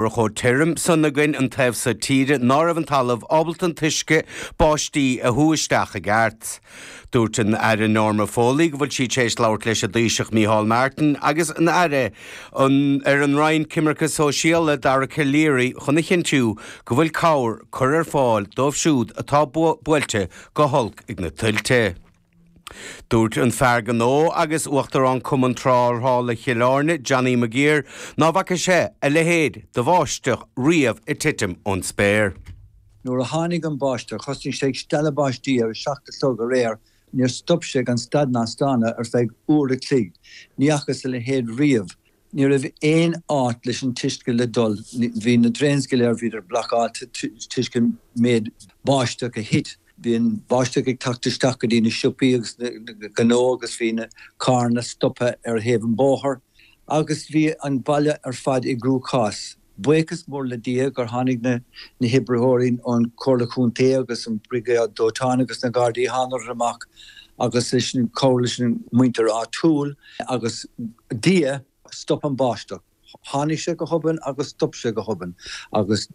bhí chomh tirim san againn an taobh so tíre ná raibh an talamh ábalta an t-uisce báistí a shú isteach i gceart. Dúirt an tAire Norma Foley go bhfuil sí tar éis labhairt leis an dTaoiseach Micheál Martin agus an Aire ar an Roinn Coimirce Sóisialaí, Dara Calleary chun a chinntiú go bhfuil cabhair á cur ar fáil dóibh siúd atá buailte go holc ag na tuilte. Dúirt an fear gnó agus Uachtarán Cumann Tráchtála Chill Airne, Johnny McGuire, ná bhfaca sé a leithéid de bháisteach riamh ag titim ón spéir. Nuair a tháinig an bháisteach, thosnaigh sé ag stealladh báistí ar a seacht a chlog aréir, níor stop sé gan stad ná staonadh ar feadh uair a chloig. Ní fhacas a leithéid riamh. Ní raibh aon áit leis an t-uisce le dul, bhí na drains go léir, bhíodar blocáilte, toisc an méid báisteach a thit, bhí an báisteach ag teacht isteach go dtí na siopaí agus na gnónna agus bhí na carranna stoptha ar thaobh an bóthar agus bhí an baile ar fad i gcruachás. Buíochas mór le Dia gur tháinig na hoibritheoirí ón Chomhairle Chontae agus an Briogáid Dóiteáin agus na Gardaí, thángadar amach agus leis an chabhair leis an muintir áitiúil agus Dia stop an báisteach. Tháinig sé go hobann agus stop sé go hobann agus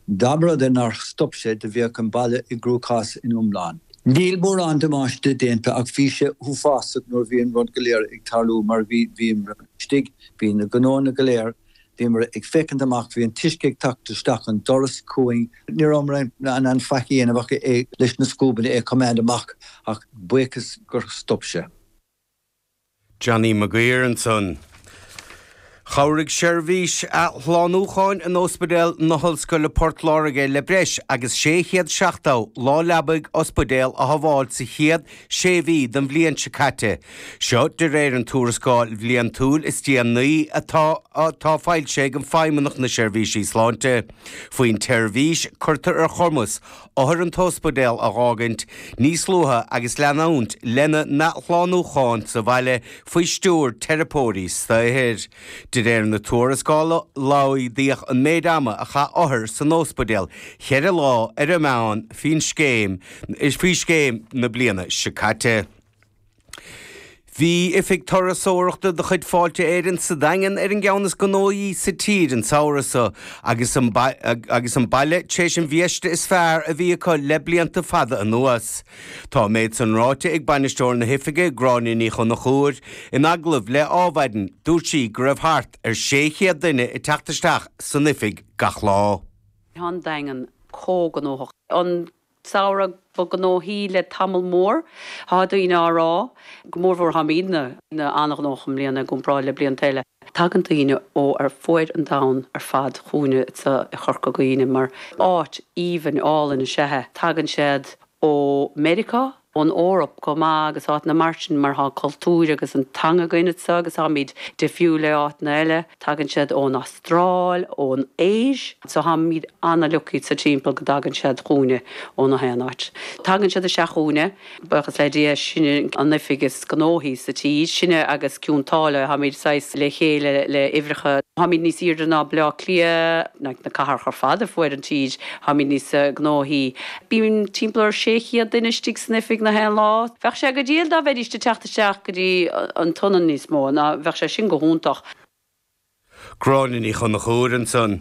dá mba rud é nár stop sé do bheadh an baile i gcruachás ina iomlán. Níl mórán damáiste déanta ach bhí sé uafásach nuair a bhí an rud go léir ag tarlú mar bhí bhíomar istigh, bhí na gnóanna go léir Bhíomar ag féachaint amach, bhí an t-uisce ag teacht isteach an doras chugainn. Ní rabhamar in ann faic a dhéanamh ach leis na scuabanna é a choimeád amach ach buíochas gur stop sé. Johnny McGuire ansan. Chabhraigh seirbhís athshlánúcháin in Ospidéal na hOllscoile Port Láirge le breis agus 670 lá leabaidh ospidéil a shábháil sa chéad sé mhí den bhliain seo caite. Seo de réir an tuarascáil bhliantúil is déanaí atá atá foilsithe ag Feidhmeannacht na Seirbhísí Sláinte. Faoin tseirbhís, cuirtear ar chumas othair an t-ospidéal a dh'fhágaint níos luaithe agus leanúint lena n-athshlánúchán sa bhaile faoi stiúir teiripeoirí saothair. De réir na tuarascála, laghdaíodh an méid ama a chaith othair san ospidéal cheithre lá ar an meán faoin scéim faoi scéim na bliana seo caite. Bhí oifig turasóireachta de chuid Fáilte Éireann sa Daingean ar an gceann is gnóthaí sa tír an samhradh so agus an baile tar éis an bhiaiste is fearr a bhí acu le blianta fada anuas. Tá an méid san ráite ag Bainisteoir na hOifige, Gráinne Ní Chonchúir. In agallamh le Ádhmhaidin, dúirt sí go raibh thart ar 600 duine ag teacht isteach san oifig gach lá. Tá an Daingean an-ghnóthach an samhradh ba gnóthaí le tamall mór. Tá daoine á rá, go mórmhór táimidne an-, an-ghnóthach i mbliana i gcomparáid le blianta eile. Tagann daoine ó ar fuaid an domhain ar fad chugainne sa Chorca Dhuibhne mar áit aoibhinn álainn is ea é. Tagann siad ó Mheiriceá, ón Eoraip chomh maith agus áiteanna mar sin mar tá an cultúr agus an teanga againn anseo agus táimid difriúil le áiteanna eile. Tagann siad ón Astráil, ón Asia, so táimid ana-lucky sa timpeall go dtagann siad chugainne ó na haon áit. Tagann siad isteach chugainne. buíochas le Dia, sinne an oifig is gnóthaí sa tír, sinne agus Cionn tSáile, táimid saghas le chéile le uimhreacha, táimid níos aoirde ná Bleá Cliath, like na cathracha ar fad ar fuaid an tír, táimid níos gnóthaí. Bíonn timpeall ar 600 duine istigh san oifig na haon lá. Bheadh sé go diail dá bheidís de teacht isteach go dtí an tSionainn níos mó, ná bheadh sé sin go hiontach. Gráinne Ní Chonchúir ansan.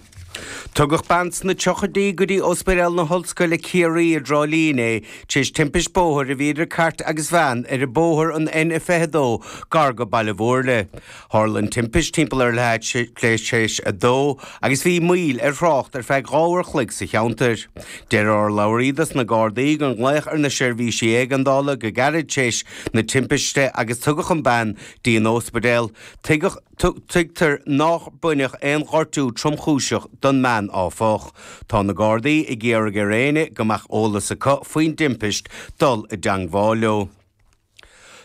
Tugadh bean sna triochaidí go dtí Óspaidéal na hOllscoile Ciarraí i dTrá Lí inné tréis timpiste bóthair a bhí idir cairt agus veain ar bóthar an N a 22 gar go Baile Mhúirne. Tharla an timpiste timpeall ar a leath tréis a dó agus bhí moill ar thrácht ar feadh dhá uair chloig sa cheantair. Deir urlabhraí dos na Gardaí gur glaodh ar na seirbhísí éigeandála go gairid tréis na timpiste agus tugadh an bean dtí an t-óspaidéal. Tuigtear nách baineadh aon ghortú tromchúiseach don mbean áfach. Tá na Gardaí ag iarraidh ar éinne go mbeadh eolas acu faoin dtimpiste dul i dteangmháil leo.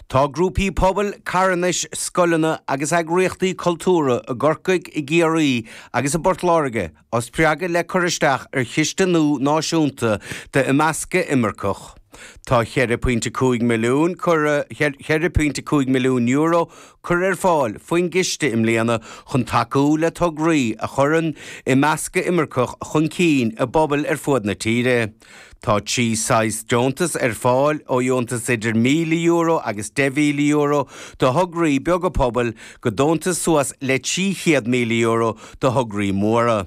Tá grúpaí pobail, carthanais, scoileanna agus eagraíochtaí cultúra i gCorcaigh, i gCiarraí agus i bPort Láirge á spreagadh le cur isteach ar chiste nua náisiúnta d'imeascadh imirceach. Tá €4.5 milliún curtha ar fáil faoin gciste i mbliana chun tacú le tograí a chuireann imeascadh imirceach chun cinn i bpobail ar fud na tíre. Tá trí saghas deontas ar fáil, ó dheontas idir €1,000 agus €10,000 do thograí beaga pobail go deontas suas le €300,000 do thograí móra.